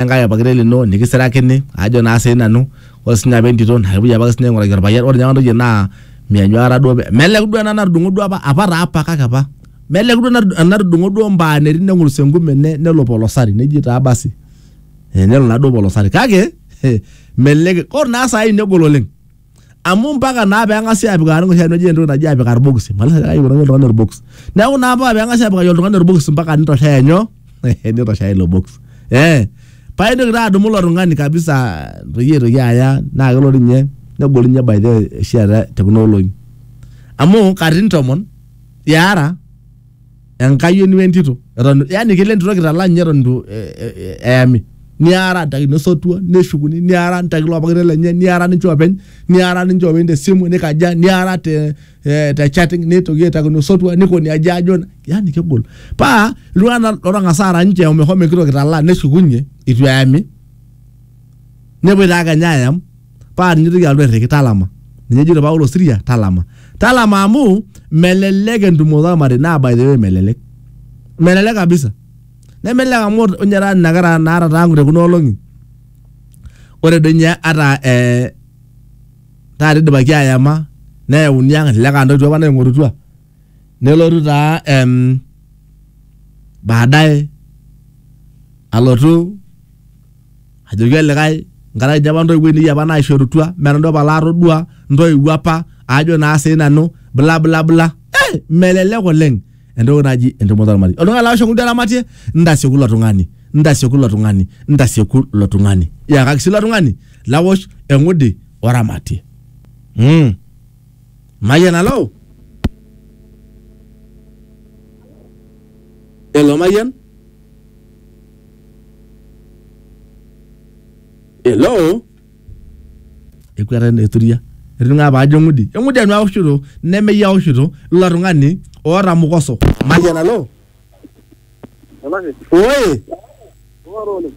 enkae orpakilet lino nikisirakini ajo naa sii nanu ore sinye apa entito naa kepuoi apake sinye aing'uraki orpayian ore ninye apa ntoyie naa meanyu aikata duo pe- melek duo ena natudung'o duo apa apa taa apa kake apa melek duo enatu- enatudung'o duo mbaa netii neng'urus enkume ne- nelo polosari neji taa basi Eh, nelo naa duo polosari kake eh, melek ore naa saai negol oleng amu mpaka naa peng'asi apikaki enoshi aji entoki naji apik irbokisi malish ajo kaipikaki oltung'ani orbokis neeku naa mpaka peng'asi apikaki oltung'ani orbokis mpaka nitoshea nyoo nitoshea ilo bokis eh paa intoki taa adumu ilo tung'ani kabisa peyie eitoki aya naa kelo dii ninye negol ninye by the way oshi eeta te kuna olong'i amu katitin tomon iara. enkayioni wentito eton yani kelo entito kitalaa ninye eton itu eh, eh, eh, eyami niara ntaki nesotua neshukuni niara ntaki lopakita lenye niara ninche openy niara ninche openy tesimu nikaja niara te, eh, te chatting nitoki aitaki nosotua nikoni aja ajo yani kegol paa iltung'anak lotang'asa ara ninche omehomo enkitok kitalaa neshukunye itu eyami nepuoi taa kenya ayam paa tinitoki alotu airriki talama ninye ejito Paulo Siria talama talama amu melelek entumoto ormarei naa by the way melelek melelek kabisa nemelelek amu ninye taa nena kera naata tang te kuna olong'i ore doi ninye ata eh, taata idipaki ayama neyauni ang elelek aa ntoiwuo apa naing'orutua nelotu taa em, baadaye alotu ajoki olikae nkaraki dii apa ntoiwuo ainei apa naishorutua mee nanu dii apa laatodua ntoiwuo apa aajo naa sii nanu bla bla bla eh, melelek oleng entoki naji entumoto ormarei oltung'ani laa oshomo duo eramatie ntasieku ilo tung'ani ntasieku ilo tung'ani ntasieku ilo tung'ani yakaki sii ilo tung'ani lawosh eng'udi oramatie mm. mayian alo elo mayian hello ekwata eturia etining'aa apa ajo eng'udi eng'udi anu aoshito nemeyie aoshito ilo tung'ani oota mukoso mayian alo Olaki, oye ng'oru oleng.